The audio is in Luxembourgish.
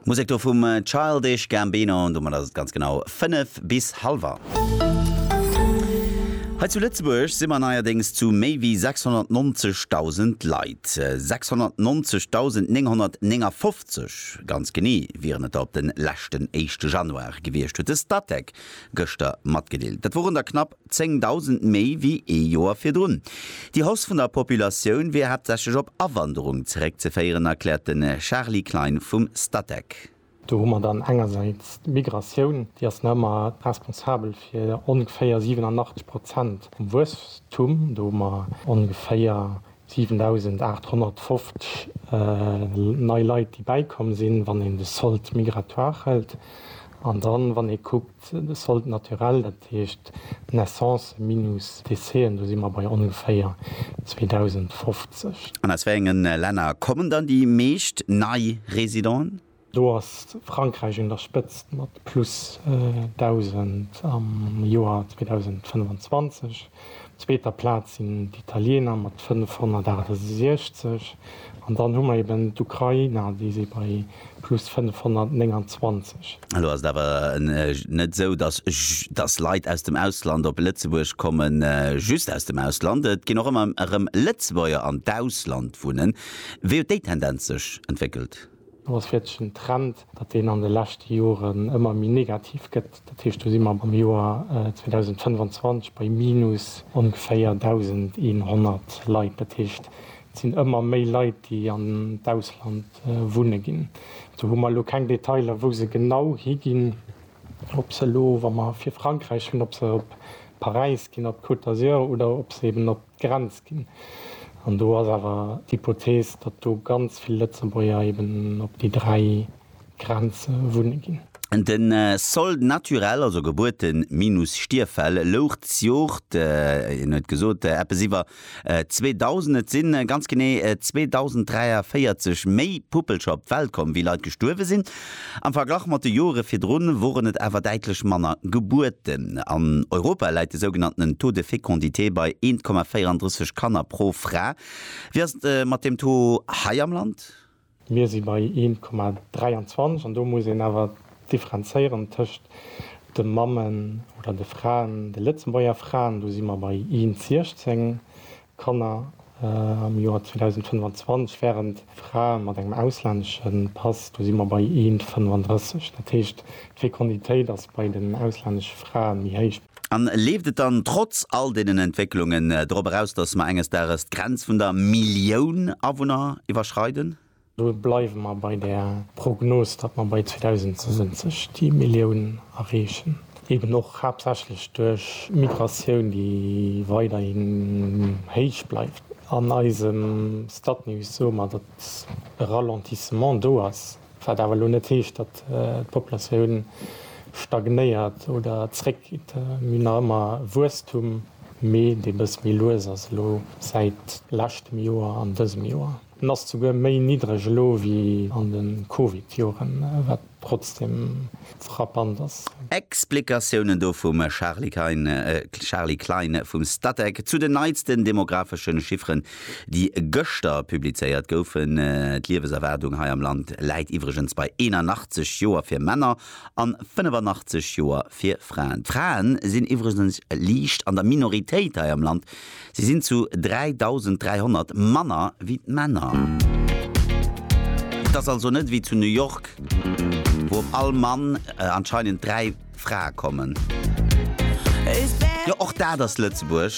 Musek do vum Childish Gambino, an domat ass et ganz genau 5 bis hallwer. Hei zu Lëtzebuerg si mer neierdéngs zu méi wéi 690.000 Leit. 690.959 ganz genee wieren et der op de leschten éischte Januar gewiescht, huet de Statec gëschter matgedeelt. Dat woren der knapp 10.000 méi wéi ee Joer virdrun. Déi Hausse vun der Populatioun wier haaptsächlech op Awanderung zeréckzeféieren, erkläert de Charly Klein vum Statec. Do hu mer dann engersäits d'Migratioun, déi ass nach ëmmer responsabel fir ongeféier 87 Prozent vum Wuesstum. Do hu mer ongeféier 7.850 nei Leit, déi bäikomm sinn, wann een de Solde migratoire hëlt. An dann, wann ee kuckt, de Solde naturel, dat heescht Naissancen minus Décéen, do si mer bei ongeféier 2.050. An aus wéi enge Länner kommen dann déi meescht nei Residenten? Do ass Frankräich un der Spëtzt mat plus 1.000 am Joer 2025. Op zweeter Plaz sinn d'Italieener mat 568 an dann hu mer eben d'Ukrainer, déi si bei plus 529. Elo ass et awer net esou, datt Leit aus dem Ausland op Lëtzebuerg kommen, just aus dem Ausland, et ginn och ëmmer erëm Lëtzebuerger an d'Ausland wunnen. Wéi huet déi Tendenz sech entwéckelt? Et ass wierklech en Trend, datt deen an de leschte Joren ëmmer méi negativ gëtt. Dat heescht, do si mer am Joer 2025 bei minus ongeféier 1.100 Leit. Dat heescht, et sinn ëmmer méi Leit, déi an d'Ausland wunne ginn. Do hu mer elo keng Detailer, wou se genau higinn, ob se elo, wa mer fir Frankräich hunn, ob se op Paräis ginn, op d'Côte d'Azur oder ob se eeben op d'Grenz ginn. An do ass awer d'Hypothees, datt do ganz vill Lëtzebuerger eben op déi dräi Grenze wunne ginn. De Solde naturel, also Gebuerte minus Stierffäll, louch dës Jor, hien huet gesot, eppes iwwer 2.000. Et si ganz genee 2.043 méi Puppelcher op d'Welt komm, wéi Leit gestuerwe sinn. Am Verglach mat de Joere virdrun woren et awer däitlech manner Gebuerten. An Europa läit de sougenanntenen Taux de fécondité bei 1,34 Kanner pro Fra. Wéi ass et mat deem Taux hei am Land? Mir si bei 1,23 an do muss een awer differenzéieren tëscht de Mammen oder de Fraen, de Lëtzebuerger Fraen, do si mer bei 1,16, Kanner am Joer 2025 wären Frae mat engem auslännesche Pass, do si mer bei Eent 35. Dat heescht, d'Fekonditéit ass bei den auslännesche Frae méi héich. An leeft et dann trotz all deenen Entwécklungen drop eraus, datt mer enges Dages d'Grenz vun der Millioun Awunner iwwerschreiden? Do bleiwe mer bei der Prognos, datt mer bei 2070 déi Millioun erreechen, eben och haaptsächlech duerch Migratioun, déi weiderhin héich bleift. An eisem Statnews soe mer, datt e Ralentissement do ass, wat awer elo net heescht, datt d'Populatioun stagnéiert oder zréckgeet. Mir hunn nach ëmmer Wuesstum, mee dee bëss méi lues ass elo säit leschtem Joer an dësem Joer. En ass souguer méi niddreg elo wéi an de Covid-Joren, wat trotzdeem frappant ass. Explikatiounen do vum Charly Klein vum Statec zu den neitsten demografeschen Chifferen, déi gëschter publizéiert goufen. D'Lieweserwaardung hei am Land läit iwwregens bei 81 Joer fir Männer an 85 Joer fir Fraen. D'Fraen sinn iwwregens liicht an der Minoritéit hei am Land. Si sinn zu 3.300 manner wéi d'Männer. Et ass also net wéi zu New York, wou op all Mann anscheinend dräi Frae kommen. Jo, och dat ass Lëtzebuerg.